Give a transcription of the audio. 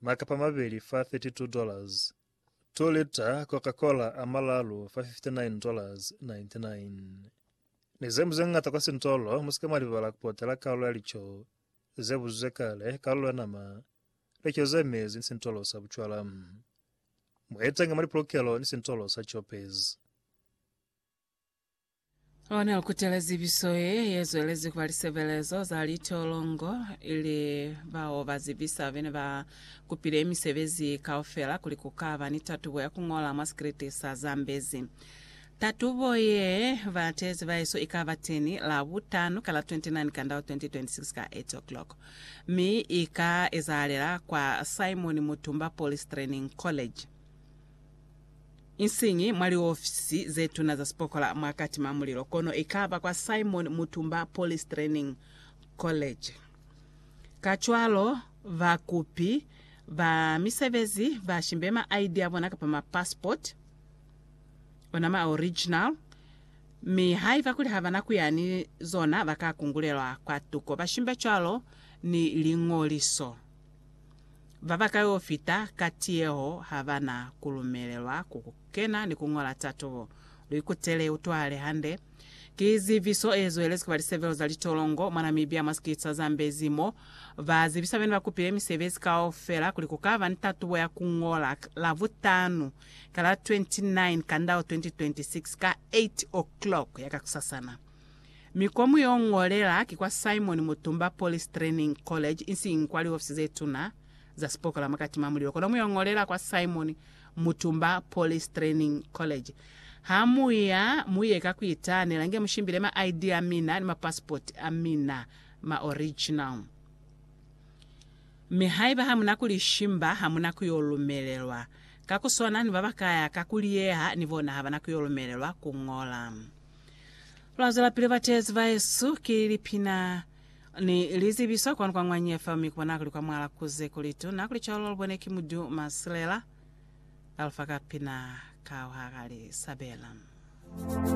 makapa mabeli fa 32 dollars, 2 lita Coca-Cola a malalu fa 59 dollars 99. Ni zeñwi zeñata kwa sintolo, musika mwalibala kupotela kalulo ya lico zebuzizwe kale, kalulo ya nama, lico zemezi ni sintolo sa bucwala. Muetenge mwa lipulukelo ni sintolo sa chopes. Ona ukutela zibiso ye yezwelezi kuba lisebelezo za litolongo ili bao ba zibisa bene ba kupile misebezi kaufela kuli ku ka ba ni tatubo ya ku ngola mwa sikriti sa Zambezi. Tatubo ye batezi baeso i ka ba teni la butano ka la 29 Kandau 2026 ka 8 o'clock, mi i ka ezahalela kwa Simon Mutumba Police Training College. Isiñi mwa liofisi ze tuna za sipokola mwa katima mulilo, kono i ka ba kwa Simon Mutumba Police Training College. Kacwalo, bakupi ba misebezi ba shimbe ma ID a bona kapa ma passport, ona ma original, mi haiba kuli ha ba na ku ya ni zona ba ka kungulelwa kwa tuko. Ba shimbe cwalo ni liñoliso. Baba kaufita ka tiyeho ha ba na ku lumelelwa ku kena ni ku ñola tatubo. Lu ikutele, utwahale hande. Ki zibiso e zwelezi ku ba lisebelo za litolongo mwa Namibia mwa sikiliti sa Zambezi mo ba zibisa bena ba kupile misebezi kaufela kuli ku ka ba ni tatubo ya ku ñola Lavutanu ka la 29 Kandau 2026 ka 8:00 ya kakusasana. Mi ko mu yo ngolela ki kwa Simon Mutumba Police Training College isiñi kwa liofisi ze tuna za sipokola mwa Katima Mulilo kono mu yo ngolela kwa Simon Mutumba Police Training College. Ha mu ya, mu ye ka ku itaanela nge mu shimbile ma ID a mina ni ma passport a mina, ma original. Mi haiba ha mu na ku li shimba, ha mu na ku yo lumelelwa. Ka ku swana ni ba ba kaya ka ku liyeha, ni bona ha ba na ku yo lumelelwa ku ngola. Lwa zwelapili bateezi bahesu, ki lipina ni lizibiso kwanu kwa Ngwanye FM, mi kubona kuli kwa mwala kuze kuli tuna kuli cwalo lubone ki Mudu Masilela, Alfa ka pina ka Ohaka Lisabela.